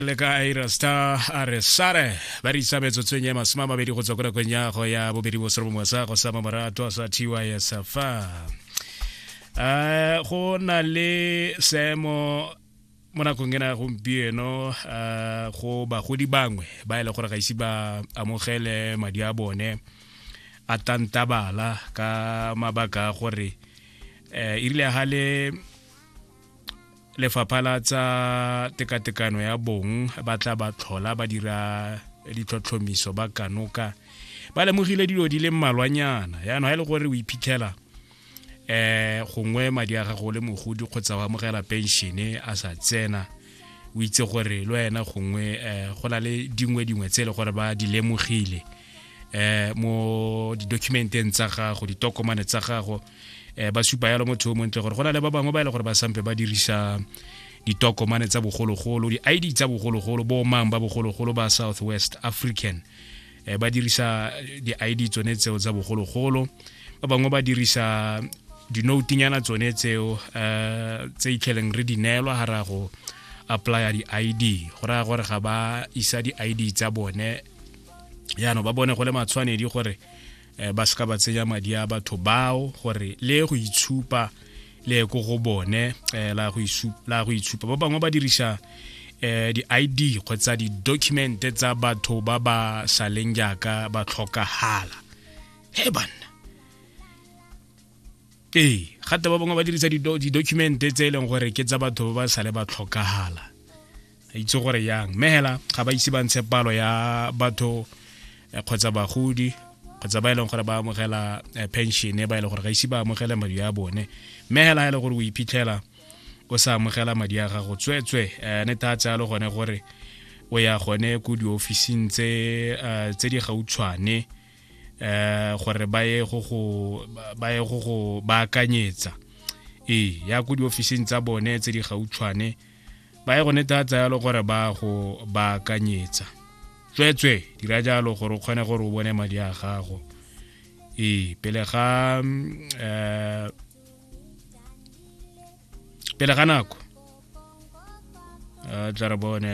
le ka aira star a re sare ba re isa metsotsong ya masome a mabedi go tswa ko nakong ya go ya bobedi bo sere bongwe sa go sa mamorato sa tysfa um go na le seemo mo nakong ena ya gompieno um go bagodi bangwe ba e le gore ga ise ba amogele madi a bone a tantabala ka mabaka a gore um e rile ga le lefapha la tsa tekatekano ya bong ba tla ba tlhola ba dira ditlhotlhomiso ba kanoka ba lemogile dilo di le mmalwanyana yaanong ga e le gore o iphitlhela eh gongwe madi a gago le mogodi kgotsa wa amogela penšene a sa tsena o itse gore le wena gongwe um go na le dingwe dingwe tse e le gore ba di lemogile eh mo di-documenteng tsa gago ditokomane tsa gago eh ba supa yalo motho o montle gore go na le ba bangwe ba e le gore ba sampe ba dirisa ditokomane tsa bogologolo di-id tsa bogologolo bo mang ba bogologolo ba south west african eh ba dirisa di-id tsone tseo tsa bogologolo ba bangwe ba dirisa dinoutinyana tsone tseo eh tse itlheleng re di neelwa ga ra go applya di-id go raya gore ga ba isa di-id tsa bone yaanong ba bone go le matshwanedi gore um ba seka ba tsenya madi a batho bao gore le go itshupa le ko go bone um la go itshupa ba bangwe ba dirisa um di-id kgotsa di-document tsa batho ba ba saleng jaaka ba tlhokagala he banna ee gate ba bangwe ba dirisa di-document tse e leng gore ke tsa batho ba ba sale ba tlhokagala a itse gore yang mme hela ga ba ise ba ntshe palo ya batho eh, kgotsa bagodi kgotsa ba e leng gore ba amogela eh, pension ba e leng gore ga ise ba amogele madi a bone mme hela e le gore o iphitlhela o sa amogela madi a gago tsweetswe um eh, ne tha tsalo gone gore o ya gone ko diofising tse eh, tse di gautshwane um gore ba ye go go baakanyetsa ee ya ko diofising tsa bone tse di gautshwane ba ye go netatsa yalo gore ba go baakanyetsa tsweetswe dira jalo gore o kgone gore o bone madi a gago ee pele ga um pele ga nako a tla re bone